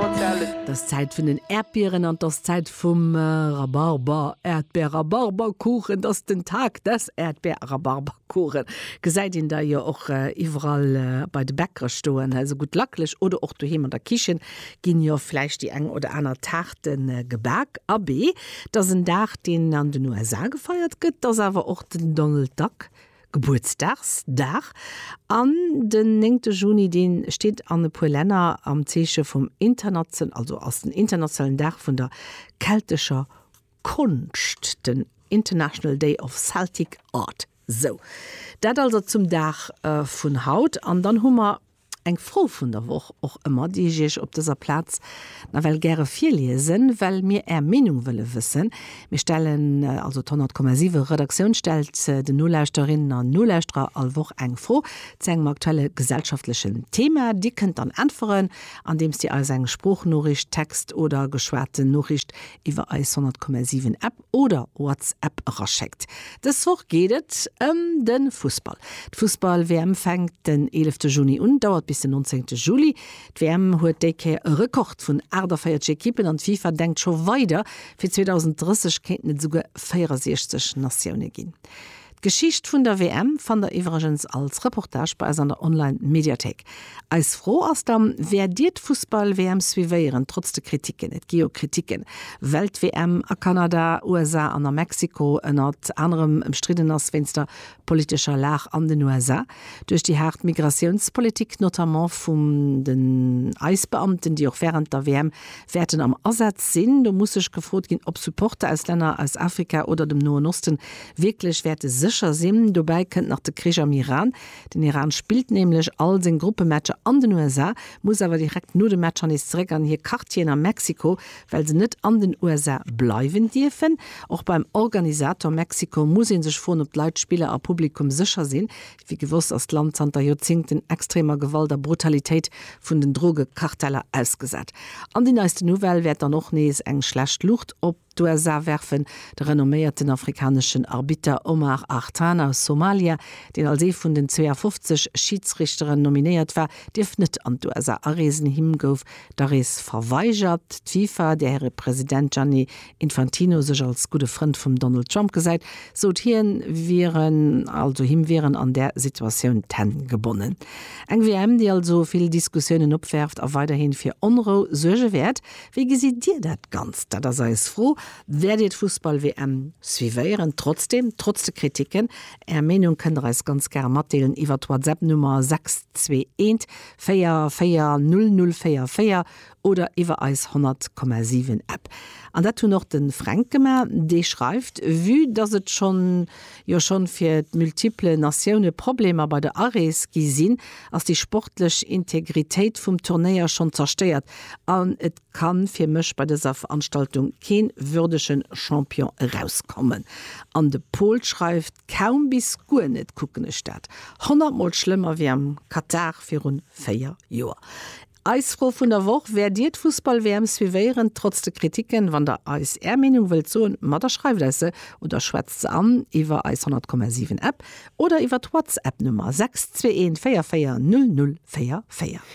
't ass Zäit vun den Äerdbieren an 't ass Zäit vum Rhabarber, Äerdbeer, Rhabarberkuchen, 't ass den Tag des Äerdbeer, Rhabarberkuchen. Gesäit een der jo och iwwerall bei de Bäckere stoen, esou gutt lacklech oder och doheem an der Kichen ginn jo vläicht déi eng oder aner Taarte gebak. Abee, 't ass en Dag, deen an den USA gefeiert gëtt, 't ass awer och den Donald Duck Gebuertsdagsdag an den néngte Juni, dee steet an e puer Länner am Zeeche vum internation, also ass den internationalen Dag vun der keltescher Konscht, den International Day of Celtic Art. Sou, dat also zum Dag vun haut. An dann hu mer Eng Fro vun der Woch och ëmmer, déi ech Iech op dëser Plaz nawell gäre virliesen, well mir Är Meenung wëlle wëssen. Mir stellen, also d'Honnertkommasiwwe Redaktioun stellt den Nolauschterinnen an Nolauschterer all Woch eng Fro zu engem aktuelle gesellschaftlechen Thema. Dir kënnt dann äntweren, andeems Dir eis eng Sproochnoriicht, Text oder geschwate Noriicht iwwer eis Honnertkommasiwwen App, oder WhatsApp eraschéckt. Dës Woch geet et ëm de Fussball. D'Fussball-WM fänkt den eelefte Juni un, dauert bis den nonzéngte Juli. D'WM huet déi Kéier e Rekord vun 48 Ekippen an d'FIFA denkt scho weider, fir 2030 kéinten et esouguer 64 Natioune ginn. D'Geschicht vun der WM fannt der iwwregens als Reportage bei eis an der Online Mediathéik. Eis Fro ass dann, Wäert dir d'Fussball WM suivéieren, trotz de Kritiken? Et gi jo Kritiken, well d'WM a Kanada, USA an a Mexiko ënnert anerem ëmstridden ass wéinst der politescher Lag an den USA. Duerch déi haart Migratiounspolitik, notamment vum den Ice-Beamten, déi och während der WM wäerten am Asaz sinn, do muss sech gefrot ginn, ob Supporter aus Länner aus Afrika oder dem Noen Osten wierklech wäerte sécher sinn. Dobäi kënnt nach de Krich am Iran. Den Iran spillt nämlech all seng Gruppematcher an den USA, muss awer direkt no de Matcher nees zeréck an hir Quartieren a Mexiko, well se net an den USA bleiwen dierfen. Och beim Organisator Mexiko muss ee sech froen, ob d'Leit, Spiller a Publikum sécher sinn. Wéi gewosst ass d'Land zanter Joerzéngten extremer Gewalt a Brutalitéit vun den Drogekarteller ausgesat. An déi neiste Nouvelle wäert dann och nees eng schlecht Luucht op d'USA werfen. De renomméierten afrikaneschen Arbitter Omar Artan aus Somalia, deen als ee vun den 52 Schiidsrichteren nominéiert war, dierf net an d'USA areesen. Him gouf D'Arees verweigert d'FIFA, där hire President Gianni Infantino sech als gudde Frënd vum Donald Trump gesäit, sot hien, wieren also him wieren an där Situatioun d'Hänn gebonnen. Eng WM, déi also vill Diskussiounen opwäerft a weiderhi fir Onrou suerge wäert. Wéi gesitt Dir dat Ganzt? Dat ass eis Fro. Wäert Dir d'Fussball-WM suivéieren? Trotzdem, trotz de Kriticken, Är Meenung kënnt Der eis ganz gare matdeelen iwwert d'Whatsapp-Nummer 621 440044 oder iwwer eis 100,7 App. An dat hunn och de Fränk gemaach. Dee schreift, Vue dass et schonn jo schonn fir d'multiple Natioune Problemer bei der Arees gi sinn, ass déi sportlech Integritéit vum Turnéier schonn zerstéiert an et ka fir mech bei dëser Veranstaltung kee würdege Champion erauskommen. An de Pol schreift, Kaum bis guer net kucken ech dat. Honnert mol schlëmmer wéi am Katar virun 4 Joer. Eis Fro vun der Woch, Wäert dir d'Fussball-WM suivéieren, trotz de Kritiken? Wann der eis är Meenung wëllt soen, ma da schreift eis se oder schwätzt se an iwwer eis 100,7 App oder iwwer d'Whatsapp Nummer 6214400444.